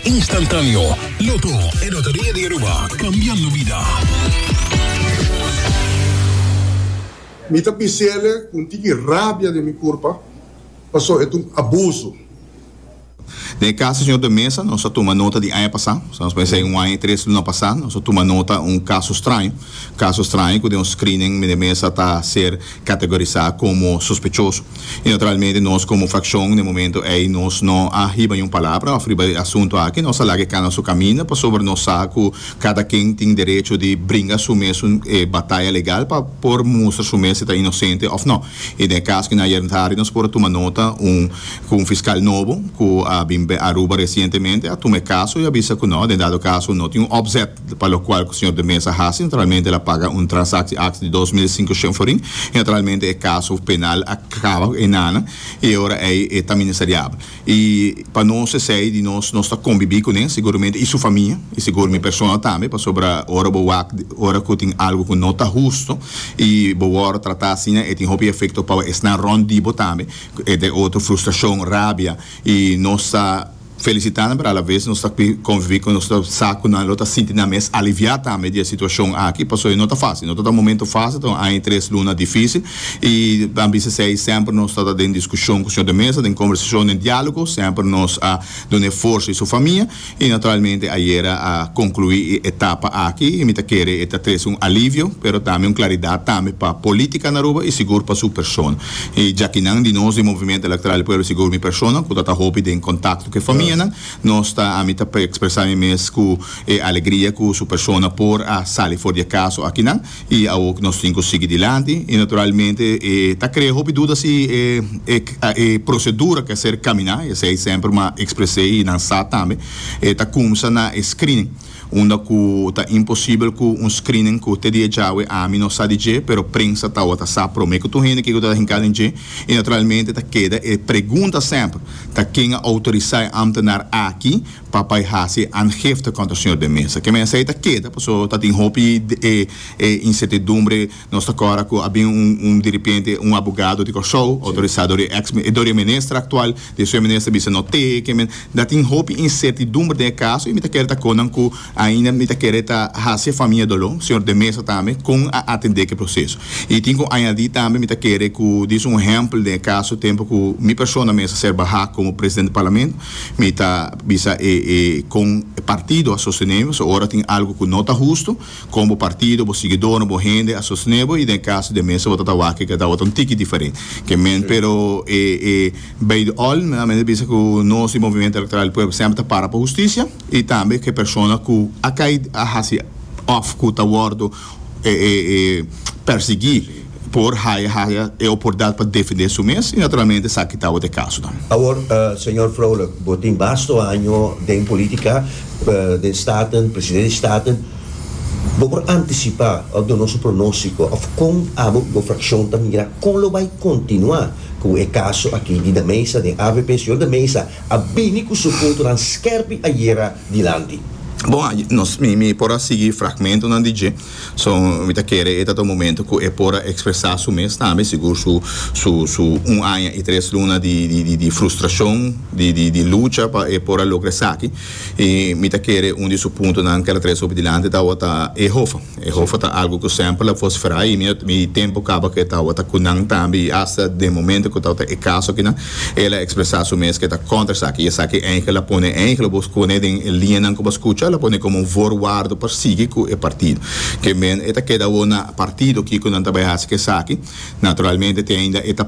Instantáneo, Lotto e Loteria di Aruba, cambiando vida. Mi ta bisele cu un tiki rabia den mi curpa pasobra e ta un abuso. Den e cas di señor de Meza nos a tuma nota di aña pasa, sa nos mester un aña y tres luna pasa, nos a tuma nota un caso straño, caso straño cu den un screening meneer Meza ta ser categorisá como sospechoso y naturalmente nos como fraccion den e momento ey nos no a hiba niun palabra of riba e asunto aki, nos a laga e cana su caminda pasobra nos sa cu cada ken tin derecho di bringa su mes un bataya legal pa por mustra su mes si ta inocente of no y den e cas cu na ayer tardi nos por a tuma nota un cu un fiscal nobo cu a bin Aruba recientemente a tuma e caso y a bisa cu no den dado caso no tin un opzet pa lokual ku señor de Meza hasi naturalmente el a paga un transaksi aksi di dos mil i sinku shenforin i naturalmente e kaso penal a kaba ku e nana i e ora ei e ta ministeriabel i pa nos esei di nos nos ta kombibí ku ne seguramente i su famia i segur mi persona tambe pasobra ora bo wak ora ku tin algu ku no ta hustu i bo wòrdu tratá asina e tin hopi efekto pa esnan rònt di bo tambe ku e otro frustrashon rabia i nos ta. felisitá nan, pero alavez nos ta kui konviví ku nos ta sa ku nan lo ta sinti nan mes aliviá tambe di e situashon aki pasobra no ta fásil, no ta ta momentu fásil, ta un aña i tres luna difísil i a bisa esei semper nos ta ta den diskushon ku señor de mesa, den kombersashon, den diálogo, semper nos a duna e forsa i su famia i naturalmente ayera a konkluí e etapa aki i mi ta kere e ta trese un alivio pero tambe un klaridat tambe pa polítika na Aruba i sigur pa su persona. E djakinan di nos di Movimiento Electoral di Pueblo sigur mi persona ku ta ta hopi den kontakto ku e famianan nos ta ami ta ekspresá mi mes ku e alegria ku su persona por a sali for di e kaso akinan i awo ku nos tin ku sigui dilanti i naturalmente e ta krea hopi duda si e e prosedura ke ser kaminá esei semper mi a ekspres'é i nan sa tambe e ta kumsa na e screening. Unda ku ta imposibel ku un screening ku te di e djawe ami no sa di dje pero prensa tawata sa promé ku tur hende kiko ta ta hinká den dje i naturalmente ta keda e pregunta semper ta ken a outorisá e ámtenar aki pa bai hasi e aangifte kontra señor den Meza? Ke mensei ta keda paso ta tin hopi e insertidumbre Nos ta kòrda ku a bin un un diripiente, un abogado di Kòrsou, outorisá dor e eks, dor e minister aktual, di esun e minister bisa no te ke men. Da tin hopi insertidumber den e kaso i mi ta kere ta kon nan ku ainda mi ta kere ta hasi e famia doló, señor de Meza tambe, kon a atendé ku e proseso. I tin ku añadí tambe mi ta kere ku disa un ehèmpel den e kaso tempu ku mi persona mester ser bahá komo presidente di Parlamento mi ta bisa e e kon e partido a sostené mi pasobra ora tin algu ku no ta hustu Kon bo partido, bo siguidónan, bo hende a sosné bo i den e kaso di e mester bo ta ta wak e keda bo ta un tiki diferent ke men pero e e bai di òl nan men ta bisa ku nos di Movimiento Elektoral di Pueblo semper ta para pa hustisia i tambe ke persona ku a kai a hasi òf ku ta wòrdu e e persiguí. por haya haya e opordat pa defendé su mes i naturalmente esaki ta awor e kasonan. Awor, señor Vrolijk, bo tin basto año den politica, den Staten, presidente di Staten. Bo por anticipá òf duna su pronóstico òf con abo ku bo fraccion ta mira con lo bai continuá ku e caso aki di Da Meza den avp? Señor Da Meza a bini ku su puntonan skerpi ayera dilanti. Bon, nos, mi por a sigui fragmentonan di dje. So mi ta kere e tata un momento cu e por a expresa su mes tambe, sigur su su su un aña y tres luna di di di di frustracion, di di di lucha pa e por a logra esaki. Y mi ta kere un di su puntonan kel a trece hopi dilanti tawata e hofa. E hofa ta algo cu semper lo a vociferá y mi mi tempo caba cu e tawata cu nan tambe y hasta den momento cu tawata e caso akinan El a expresa su mes ke ta kontra esaki y esaki eingel a pone eingel bo scone den e liñanan ku bo skucha la pone komo un voorwaardo pa sigui ku e partido. Ke men e ta keda awor na partido kico nan ta bai hasi ke esaki? Naturalmente te ainda e ta.